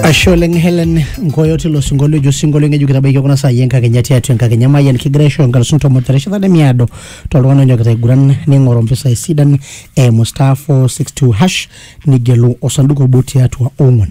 ashe oleng helen nkoyo tilo sinkolio ejo sinkolio ng'ejuk kitabaiki kuna saai enkakenya tiatua enkakenya mayian kigira aisho nkalisuni tomon terishata nemiado toltung'ani onyokita aiguran ning'oru mpisai sidan eimu star 462 hash nigelu osanduku obo tiatua ong'wan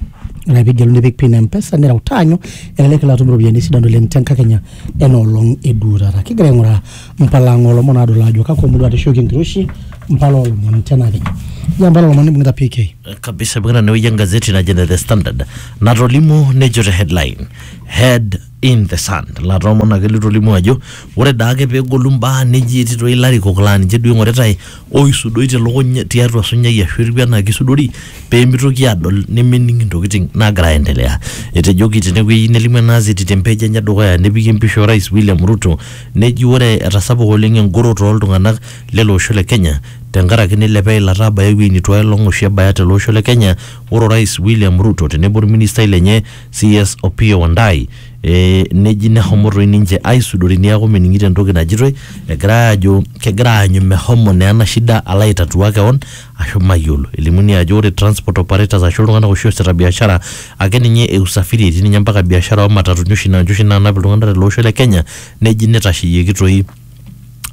ore pigelu nipik pin mpesa nireu taanyu elelek ilo atum iropiyiani sidan oleng tenkakenya enoolong eduo taata kigira aing'uraa mpala ang olomon adol ajo kakwa murua atishoki enkiroshi mpala olomon tenakenya ja mpala olomon nibung'ita pk kabisa ibung'ita enewueji engazeti naji ene the standard natolimu nejo te headline head in the sand latoomon ake litolimu ajo ore daake pegolu mbaa neji etii toi ilarikok laa ninche duo ing'oritae oisudoi telukuny tiatua sunyai ashu etiu enaa kisudori pemitoki adol nemening intokiting nagira aendelea etejoki tenewueji nelimu ena azeti te page enye edukuya nepiki empisha orais William Ruto neji ore etasapuka oleng engoro toltung'anak lele osho le kenya tenkaraki neilepa eilata abaya ewueji neitu aelong oshi ebaya tele osho le Kenya, ore Orais William Ruto tenebo olministai lenye CS Opiyo Wandayi eh, neji nehomo toi ninche aisudori neaku mening'ito entoki najitoi egirai aajo kegira aanyu mehomo naa ena shida alo aitatua kewon ashu mayiolo. Elimuni ajo ore transport operators ashu iltung'anak oshi oasita biashara ake ninye e usafiri etii ninye mpaka biashara oo matatuni oshi naa ninche oshi naanap iltung'anak tele osho le Kenya neji neitasheyieki toi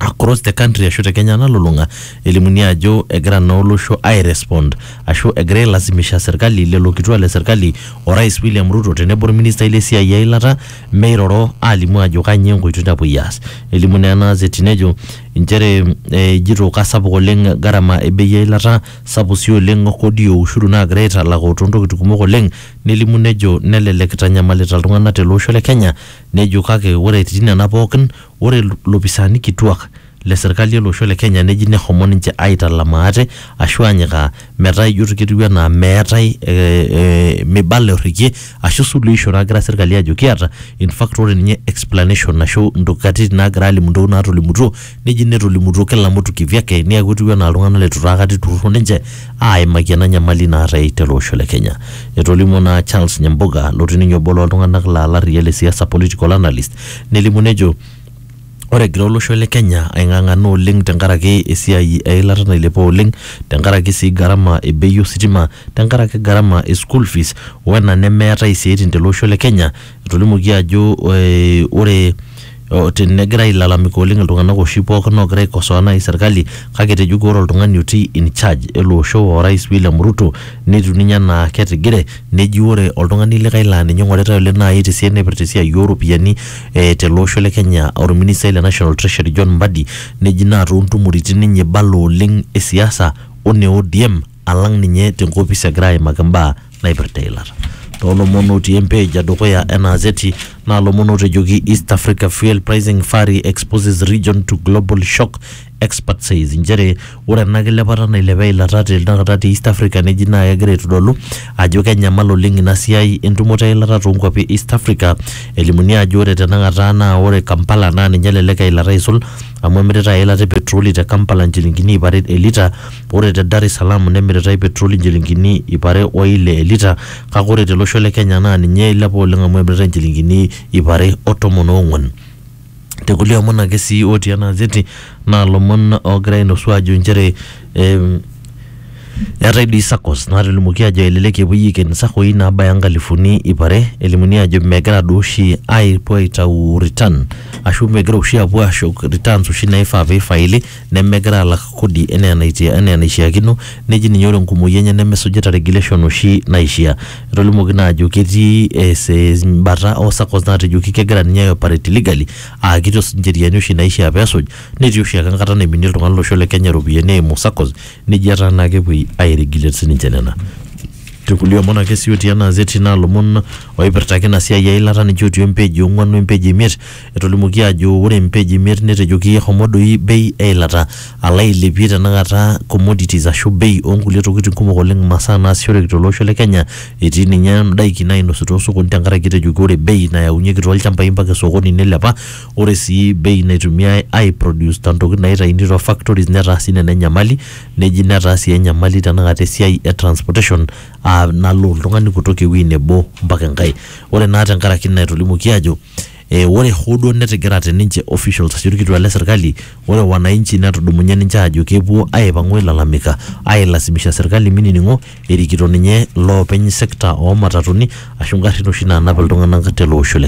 across the country ashu te Kenya nalulung'a elimuni ajo egira naa olosho ai respond ashu egira ailazimisha serkali lelo kituak le serkali o rais William Ruto tenebo orministai le siai eilata meiroro aalimu ajo kanyio enkoitoi napuoi aas. Elimu naa ena gazeti nejo inchere eh, ejito kasapuk oleng gharama e bei eilata sapuk sii oleng kodi o ushuru naagira aitalaku toontokitin kumok oleng nelimu nejo nelelek itanyamalita iltung'anak tele osho le Kenya nejo kake ore etii nena pookin Ore lopisaani kituak le serkali ele osho le Kenya neji nehomo ninche aitalam aate ashu anyikaa metaa ijo ketiu anaa meetae ee meibala orrekie ashu suluhisho nagira serkali aajo kiata. In fact ore ninye explanation ashu nkatitin naagira aalimu ntokitin naatolimutuo neji netolimutuo kila mtu kivyake neeku etiu enaa iltung'anak leitu taa aikata eiturruro ninche aaimaki ena nyamali naatae tele osho le Kenya. Etolimuo naa Charles Nyamboga lotii ninye obo loo ltung'anak laa larriyia le siasa, political analyst, nelimu nejo ore egira olosho le Kenya aing'ang'ana oleng tenkaraki esiai eilata nailepa oleng tenkaraki sii gharama e bei ositima tenkaraki gharama e school fees wena nemeetae isiaitin tele osho le Kenya etolimuoki ajo eh, ore o- tenegira ailalamika oleng iltung'anak oshi pookin ogira aikosoa naaji serkali kake etejoki ore oltung'ani otii in charge ele osho orais William Ruto netiu ninye enaa ketigire neji ore oltung'ani likae laa ninye ing'oritae oleng naaji tesiai naipirta esiai ooropiyiani eh, tele osho le Kenya orministai le National Treasury John Mbadi neji naa toontumoritin ninye ibala oleng e siasa one ODM alang ninye tenkopis egira aimaki imbaa naipirta eilata. Toolomon otii empage edukuya ena azeti naa ilomon ootejoki East Africa fuel pricing furry exposes region to global shock expert says inchere ore ena kilepata nailepa eilata te tenakata te East Africa neji naa kegira aitodolu ajo kenyamal oleng ina siai entumoto eilata toonkuapi e East Africa elimuni ajo ore tenakata naa ore Kampala naa ninye elelek eilata aisul amu emiritae eilata e petroli te Kampala inchilingini iip are elita ore te Dar es Salaam nemiritae petroli inchilingini iip are o ile elita kake ore tele osho le Kenya naa ninye eilepa oleng amu emiritae inchilingini iip are o tomon oong'wan. Te kulie omon ake sii otii ena azeti naa lomon oogira ainosu aajo inchere em, eetae dii saccos naatolimuoki aajo elelek epuoi aiken isaccoi naabaya inkalifuni iip are elimuni aajo megira duo oshi aapuo aitau return ashu megira oshi aapuo ashuk returns oshi naifaa piifaili. nemegira alak kodi enaa enaitia- enaa enaishiakino neji ninye ore enkumoi enye nemesujita regulation oshi naishia. Etolimuoki naa ajo ketii es- es- embata oo saccos naatejoki kegira ninye ai operate illegally aa kitu esuj incheriani oshi naishia peesuj netii oshi ake enkata naiminie oltung'ani olosho le Kenya iropiyiani eimu saccos neji etaa naa kepuoi ai regulate sininche nena. Te kulie omon ake sii otii ena azeti naa ilomon oipirta ake ina siai eilata ninche otii empage e ong'uan o empage e imiet Etolimuoki aajo ore mpage imiet netejoki ehomo doi bei eilata alo ailepie tenakata commodities ashu bei oonkulie tokitin kumok oleng imasaa naasishoreki tele osho le Kenya etii ninye indaiki naainosi too sokoni tenkaraki etejoki ore bei nayaunyieki too lchambai mpaka esokoni neilepa ore sii bei naitumiai ai produce te ntokitin naitaini too factories netaa sii nena enyamali neji netaa sii enyamali tenakata esiai e transportation aa nalo oltung'ani kutoka ewueji nebo mpaka enkae. Ore naa tenkaraki ina etolimuoki ajo e, ore hoo duo netigirate ninche officials ashu ilkituak le serkali, ore wananchi netudumunye ninche aajo kepuo aipang'u ailalamika ailasimisha serkali minining'o erikito ninye loopeny sekta oo matatuni ashu ngarrin oshi naanap iltung'anak tele osho le Kenya.